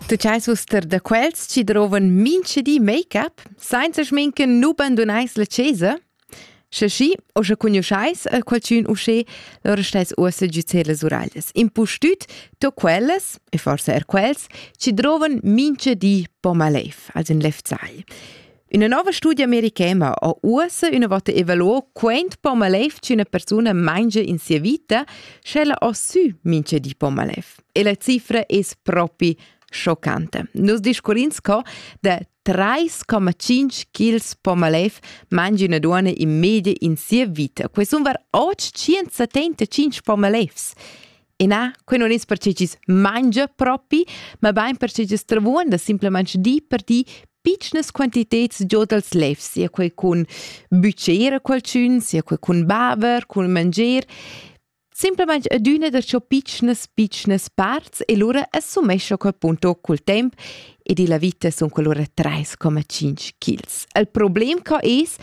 Tu chais uster da quels chi drovan mincha di make-up sainza schminken nu bandunais la chesa? Sche schi, o sche cugnuschais a qualchün usché, lura stais uossa giuzer las uraglias. Impustüt to quellas, e forse er quels, chi drovan mincha di po malev, als in lefzagl. Üna nouva studia americana ha uossa üna vota evaluo quaint po malev ch'üna persuna mangia in sia vita, sch'ella ha sü mincha di po malev. E la cifra es propi schoccante. Nus discurrins co da 3,5 kg po malev mangi una duona in media in sia vita. Que sun var 875 po malevs. E na, quei non es perche chi's mangia propi, ma bain perche chi's travuon da simplemente di per di piccnas quantiteds giò dals lefs, sia quei cun bütger a qualchün, sia quei cun baver, cun manger, Simplesmente adüna da ciò piccnas, piccnas parts e lura assumescha quel punto col temp ed illa vita sun qualura trais comma tschinch kils. Il problem co es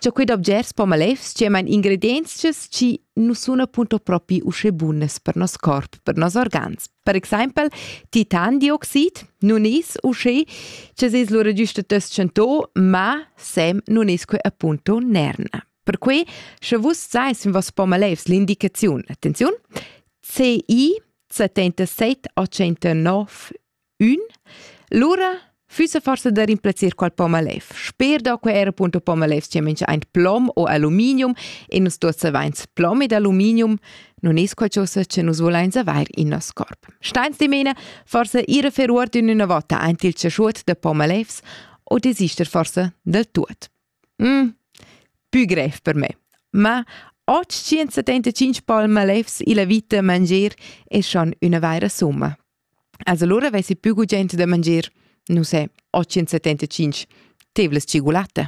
cha quid objets po malefs chiamain ingredienzas chi nu sun appunto propi usche bunas per nos corp, per nos organs. Per exaimpel titandioxid nun es usche cha s'es lura giusta tschentò, ma sem nun es que appunto nerna. Perque, sche vus sais, in vos po malefs l'indicaziun, attenziun, CI 77 89 Ün? Lura füssa forsa da rimplazzer qual pomalev. Sper da que era punto pomalevs che mincha aint plom o aluminium e nus tuots avains plom ed aluminium, non es qualchosa che nus volains avair in nos corp. Stains dimena forsa ir a fer uord in üna vota aint il chaschuot da pomalevs o desister forsa del tuot. Mm, pü grev per me. Ma 875 palmalevs illa vita manger es schon üna vaira summa. Als allora vessi più cu gente da mangier, non sé, 875, tevlas cigulatta.